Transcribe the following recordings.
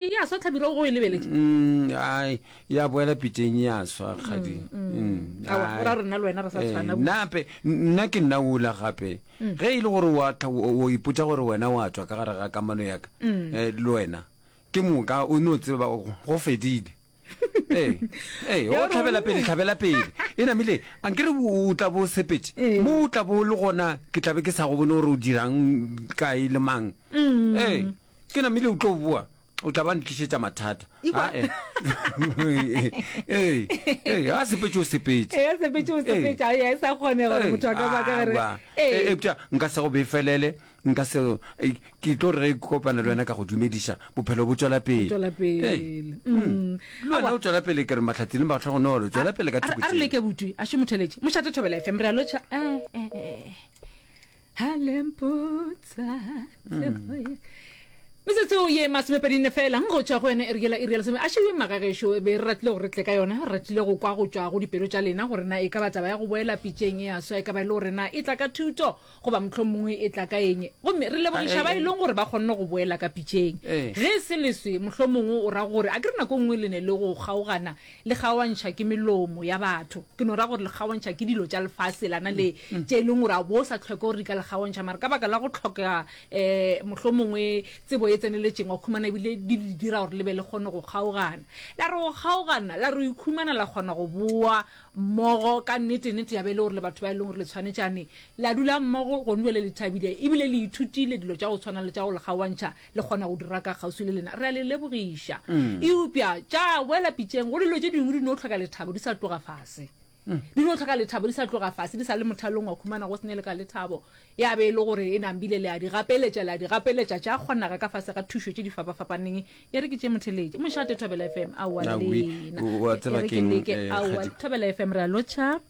E ya swa tlhabiro go e lebeletše. Mm, ai, ya boela piteng e ya swa kgadi. Mm, mm. Mm, Awa, ai. o ra rena le wena re sa Eh, tshwana. nape n- nna ke nna ola gape Mm. ge e le gore wa tla o o ipotsa gore wena wa tswa ka gare ga kamano yaka Mm. eh, le wena ke moka o no tseba go- go fedile ee ee o tlhabela pele tlhabela pele e namile a nkere o tla bo sepetse ee. mo o tla bo le gona ke tlabe ke sa go bone gore o dirang kae le mang mm. ee ke namile o tlo boa o tla ba ntlišetsa mathata ae ee ee a sepetse o sepetse ee sepetse o sepetse a ya sa kgone gore motho a ka ba ka re ee nka se go befelele Nka se ke tlo re ge ke kopana le wena ka go dumediša bophelo bo tšwela pele. Tšwela pele. Le wena o tšwela pele ke re matlhatsi le matlhogonolo tšwela pele ka thoko tšeo. A re leke butwi a šomotheletse mošate thobela FM re a lotšha. Halempotsa tsebo ye. Metsotso ye masomepedi nne fela go tšwa go yone e re yela e re yela a šebe magagešo be re ratile gore re tle ka yone re ratile go kwa go tšwa go dipelo tša lena gore na e ka ba taba ya go boela pitšeng e a swa e ka ba e le gore na e tla ka thuto Goba mohlomongwe e tla ka eng? Gomme re lebogiša ba e leng gore ba kgonne go boela ka pitšeng. Ge e se leswe, mohlomongwe o ra gore, a ke re nako e nngwe le ne le go kgaogana, le kgaoantšha ke melomo ya batho. Ke no ra gore le kgaoantšha ke dilo tša lefase lana le, tše e leng gore a bo sa tlhoke gore di ka le kgaoantšha. Mara ka baka la go tlhokega, um, mohlomongwe tsebo e tseneletšeng, wa khumana ebile di le dira gore le be le kgone go kgaogana. La re go kgaogana, la re o ikhumana la kgona go boa mmogo ka nnete, nnete ya be e le gore le batho ba e leng gore le tshwanetšane la dula mmogo gone bjale le thabile ebile le ithutile dilo tša go tshwana le tša go le kgaoantšha le kgona go dira ka kgauswi le lena. Re a le lebogiša. Eupša tša boela pitšeng go dilo tše dingwe di no tlhoka lethabo di sa tloga fase. Di no tlhoka lethabo di sa tloga fase, di sa le mothalong wa khumana go se ne le ka lethabo. Ya be e le gore e nambile le a di gapeletša, le a di gapeletša tša kgonaga ka fase ga thušo tše di fapafapaneng, e re ke tše motheletše. Mošate, Thobela FM, aowa Na oui, lena. o- o a tseba E re ke keng, leke, eh, aowa, Kgadi- Thobela FM, re a lotšha.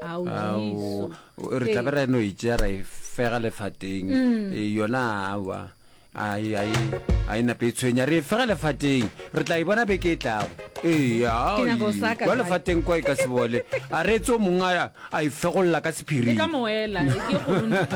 Ao, Ao, Jesu. re tla be Ee. ra no itsea ra e fega lefateng Eh, yona awa Ai, ai, ai na Petshwenya, re e fega lefateng. Re tla e bona beke e tlago. Ee, Ke nyaka go ai, saka kwa jwale. lefateng kwa e ka se bole. A reetse o mongwe a- a e fegolla ka Ke sephiri. ka moela, e ke go run-